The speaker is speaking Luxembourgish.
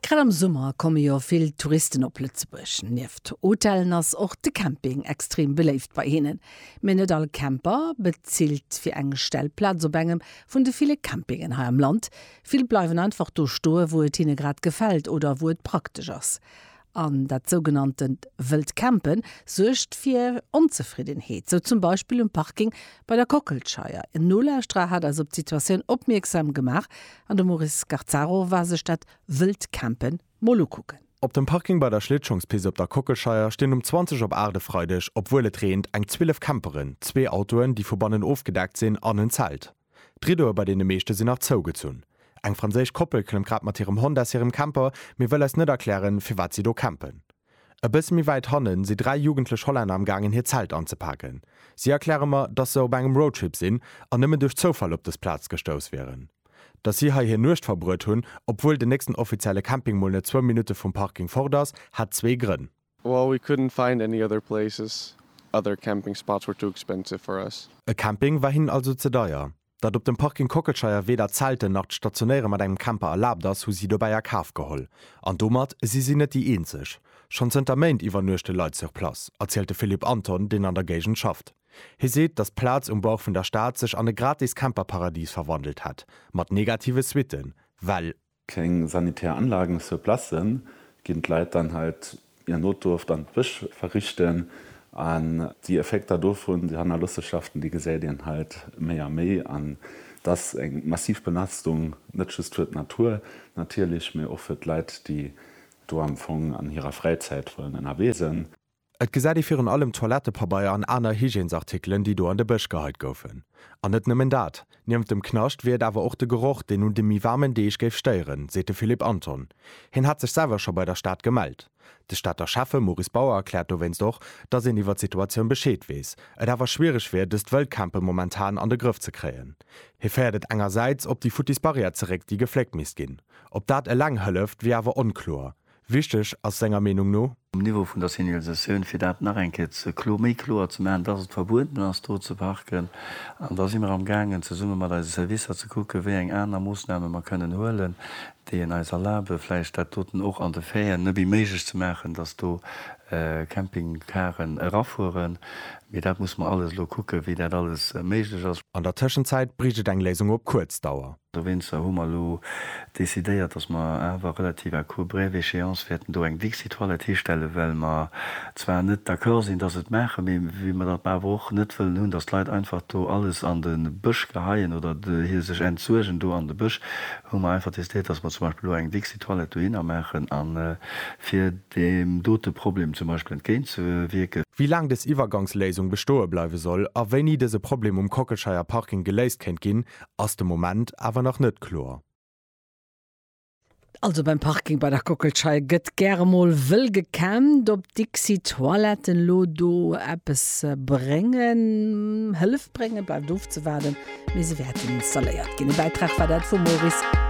Grad am Summer komme jo vill Touristen op Lëtzebuerg. Nieft Hotellen ass och de Camping extrem beléift bei hinnen. Mee net all Camper bezilt fir eng Stellplaz op engem vun de ville Campingen hei am Land. Vill bleiwen einfach do stoe wou et hinne grad gefält oder wou et praktesch ass. An dat sougenanntent wëllt Campen suergt fir Onzefriddenheet, sou zum Beispill um Parking bei der Kockelscheier. En Nolauschterer hat eis op d'Situatioun opmierksam gemaach an de Maurice Scarzaro war sech dat wëllt Campen mol ukucken. Op dem Parking bei der Schlittschongspist op der Kockelscheier stinn um 20 op 8 e Freideg, obwuel et reent, eng 12 Camperen, zwee Autoen, déi vu bannen ofgedeckt sinn, an en Zelt. D'Riddoe bei deene meeschte sinn nach zougezunn. Eng franséisch Koppel klëmmt grad mat hirem Hond aus hirem Camper, mee wëll eis net erklären, firwat si do campen. E bësse méi wäit hanne si dräi jugendlech Hollänner am gaangen hir Zelt anzepaken. Si erkläre mer, dass se op engem Roadtrip sinn an nëmmen duerch Zoufall op dës Plaz gestouss wieren. Dass si hei hir Nuecht verbruet hunn, obwuel den nächsten offizielle Camping mol net zwou Minutte vum Parking fort ass, hat zwee Grënn. Well we couldn't find any other places, other camping spots were too expensive for us. E Camping war hinnen also ze deier. Datt op dem Parking Kockelscheier weder Zelten nach d'Stationéiere mat engem Camper erlaabt ass, hu si dobäi a Kaf geholl. An domat si si net déi eenzeg. Schonn zënter Méint iwwernuechte Leit sur place, erzielt de Philippe Anton, deen an der Géigend schafft. Hie seet, datt d'Plaz um Bauch vun der Stad sech an e gratis Camperparadis verwandelt hätt, mat negative Suitten, well Keng sanitär Anlagen sur place, ginn d'Leit dann halt ier Notdurft an d'Bësch verrichten. An déi Effekter dovun, déi Hannerlossenschaften, déi gesäit een halt méi a méi. An et ass eng massiv Belastung, net just fir d'Natur natierlech, mee och fir d'Leit, déi do am Fong an hirer Fräizäit wollen ënnerwee sënn. Et gesäit ee virun allem Toilettepabeier an aner Hygiènesartikelen, déi do an de Bësch geheit goufen. An net nëmmen dat, niewent dem Knascht wier et awer och de Geroch, deen un de méi waarmen Deeg géif stéieren, seet de Philippe Anton. Hien hätt sech selwer scho bei der Stad gemellt. De Stater Schäffe Maurice Bauer erkläert dowéinst och, datt een iwwer d'Situatioun Bescheed weess, et awer schwiereg wier, dëst Wëldcampen momentan an de Grëff ze kréien. Hie féiert et engersäits op déi futtis Barrière zeréck, déi gefléckt misst ginn. Ob dat eleng hëlleft, wier awer onkloer. Wichteg ass senger Meenung no. Um Niveau vun der Signalisatioun, fir dat nach eng Kéier ze klo, méi kloer ze maachen, dass et verbueden ass do ze parken. An da si mer am gaangen zesumme mat eise Servicer ze kucke wéi eng aner Moossname mer kënnen huelen, déi en eis erlabe vläicht dat doten och an de Fairen nëbbi méiglech ze maachen, dass do Campingcaren erafueren. Mee dat musse mer alles elo kucke wéi dat alles méiglech ass. An der Tëschenzäit bréicht et eng Léisung op kuerz Dauer. Dowéinster hu mer elo decidéiert, dass mer awer relativ à court brève échéance wäerten do eng Dixit Toilette histellen, well mer zwar net d'accord sinn, dass et maachen, mee well mer dat awer och net wëllen hunn, dass d'Leit einfach do alles an de Bësch geheien oder hir sech entsuergen do an de Bësch, hu mer einfach decidéiert, dass mer zum Beispill elo eng Dixit Toilette dohinner maachen, a fir deem dote Problem zum Beispill entgéintzewierken. Wéi laang dës Iwwergangsléisung bestoe bleiwe soll a wéini dëse Problem um Kockelscheier Parking geléist kéint ginn, ass de Moment awer nach net kloer. Also beim Parking bei der Kockelschei gëtt gäre mol wëll gekämmt. Ob d'Dixi-Toiletten elo do eppes bréngen, Hëllef bréngen, bleift ofzewaarden, mee se wäerten installéiert ginn. E Bäitrag war dat vum Maurice Gassel.